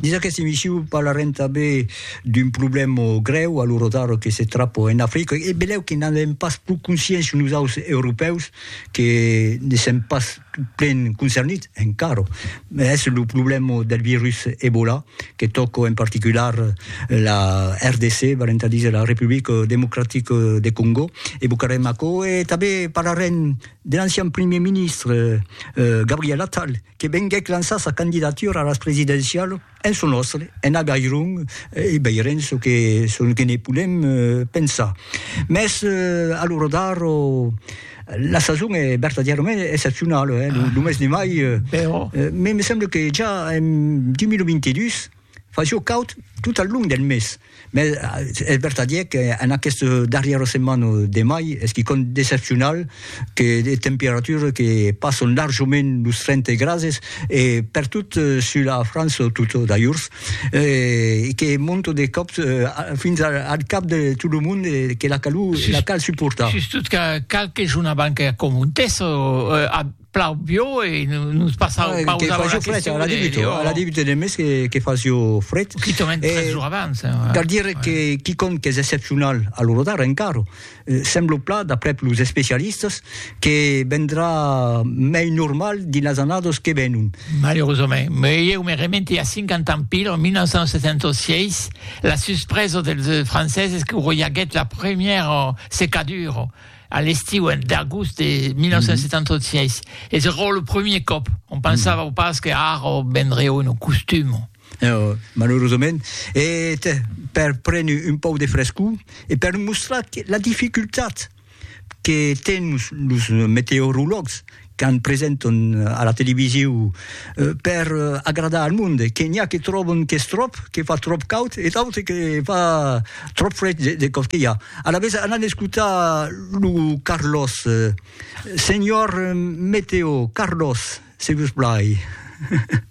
Dins aqueste emissiu parlarem tanben d'un problèma grèu a lo rotaro que se trapa en Africa e benlèu que n'an avèm pas pro consciéncia nosaus europèus que ne sèm pas plen concernits encara, es lo problèma del virus Ebola que tòca en particular la RDC, valent a díser la Republica Democratica de Còngo, evocarem aquò e tanben parlarem de l'ancian primièr ministre Gabriel Attal, que venguèc lançar sa candidatura a las presidencialas en çò nòstre, en Agairon, e veirem çò que, çò que ne podem pensar. Mès, a lo radar, la sason es vertadièrament excepcionala, eh, lo mes de mai, me semble que ja en 2022, Fa jo caud tot al long del mes, mès es vertadièr qu'en aquesta darrièra setmana de mai es quicòm d'excepcional, que de temperatures que passan larjament los 30 grases, e pertot sus la França tota d'ajorns, e que monta de còp fins al cap de tot lo mond e que la calor la cal suportar. Sustot qu'a qualques jorn abans que acontèssa, plau bio e nos passau ah, pausa a la question. Fret, a la debut, a la debut de mes que, que fasio fret. Qui te met tres jours abans. Eh, ouais. Cal dire ouais. que quicom que és excepcional a l'Orodar encara, eh, sembla pla, d'après los especialistes, que vendrà mei normal dins las annadas que venon. Malheureusament, mais eu me remente a 50 ans pil, en 1976, la suspresa dels franceses que roiaguèt la première secadura a l'estiu en d'agost de 1976 mm -hmm. e se rò lo premier còp on pensava mm -hmm. pas que ara vendré un costum No, malheureusament, e per prendre un pau de frescor e per mostrar la dificultat que tens los meteorologs qu'an presenton a la televisiu per agradar al monde, que n'i a que tròbon qu'es tròp, que fa tròp caud e d'autres que fa tròp fred de còp que i a. Alavetz anam escotar lo Carlos. Senhor Meteo, Carlos, se vos plai.